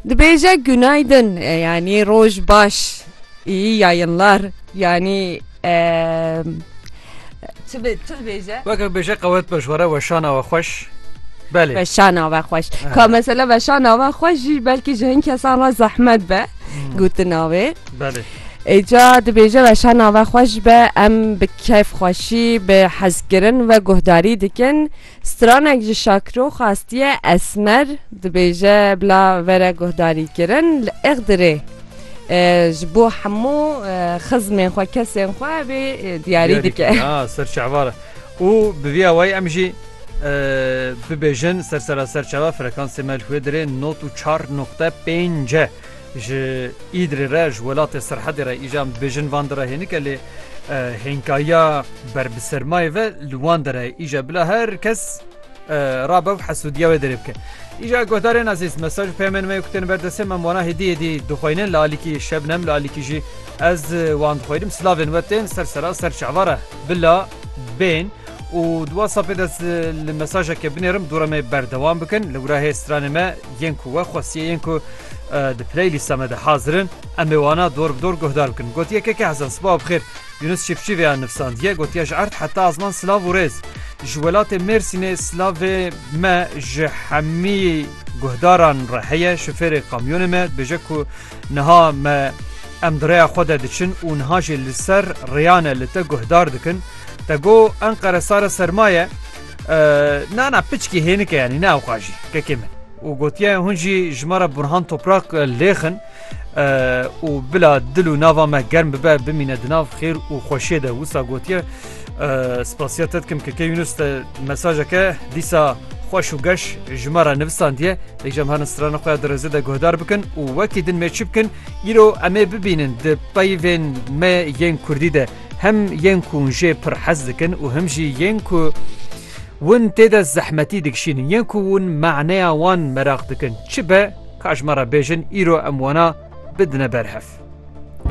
Dibêje günaydın yani roj baş iyi yayınlar yani çi dibêje? Weke bêje qewet baş were weşana we xweş. Belê. Veşana ve xweş. Ka mesela veşana ve xweş jî belkî ji hin kesan re zehmet be gotina wê. Belê. Êca dibêje veşana ve xweş be em bi keyf xweşî bi hezkirin ve guhdarî dikin. Stranek ji Şakiro xastiye Esmer dibêje bila vere guhdarîkirin li Iğdırê ji bo hemû xizmên xwe kesên xwe vê diyarî dike. Ser çavar û bi vî awayî em jî bibêjin ser sera ser çava frekansê me li Hwêdirê not û çar noqte pênc e. Ji Îdirê re, ji welatê Sirhedê re îjan bêjin van dira hênike lê hênkayiya ber bi sermayê ve li wan dere ye. Îja bila her kes rabe û hesûdiya wê derê bike. Îja guhdarên ezîz mesaj û peyamên me ku tên ber destê me wana hêdî hêdî dixweynin li alîkî Şebnem li alîkî jî ez wan dixweynim silavên we tên ser sera ser çavara bila bên. Û di WhatsAppê de ez li mesajeke binêrim dûra me berdewam bikin. Li wira hê stranê me yên ku we xwestiye yên ku di playlîsta me de hazir in em ê wana dor bi dor guhdar bikin. Gotiye Keke Hezan sibawa bi xêr. Yunus Çîfçî vêya nivsandiye gotiye ji erd heta azman silav û rêz. Ji welatê Mêrsînê silavê me ji hemî guhdaran re heye. Şofêrê kamyonê me dibêje ku Niha me em di rêya xwe de diçin û niha jî li ser rêyane li te guhdar dikin. Te got Enqere sare serma ye. Na na piçkî hênike yanî ne ewqa jî kekê min. û gotiye hûn jî ji me re Burhan Toprak lêxin û bila dil û nava me germ bibe bimîne di nav xêr û xweşiyê de wisa gotiye Spasiya te dikim keke Yunus te mesajeke dîsa xweş û geş ji me re nivisandiye lê jem herin strana xwe ya dirêzê de guhdar bikin û wekî din mêçi bikin îro em ê bibînin di peyvên me yên Kurdî de hem yên ku jê pir hez dikin û him jî yên ku win tê de zehmetî dikişînin yên ku win maneya wan meraq dikin çi be ka ji me re bêjin îro em wana bidine berhev.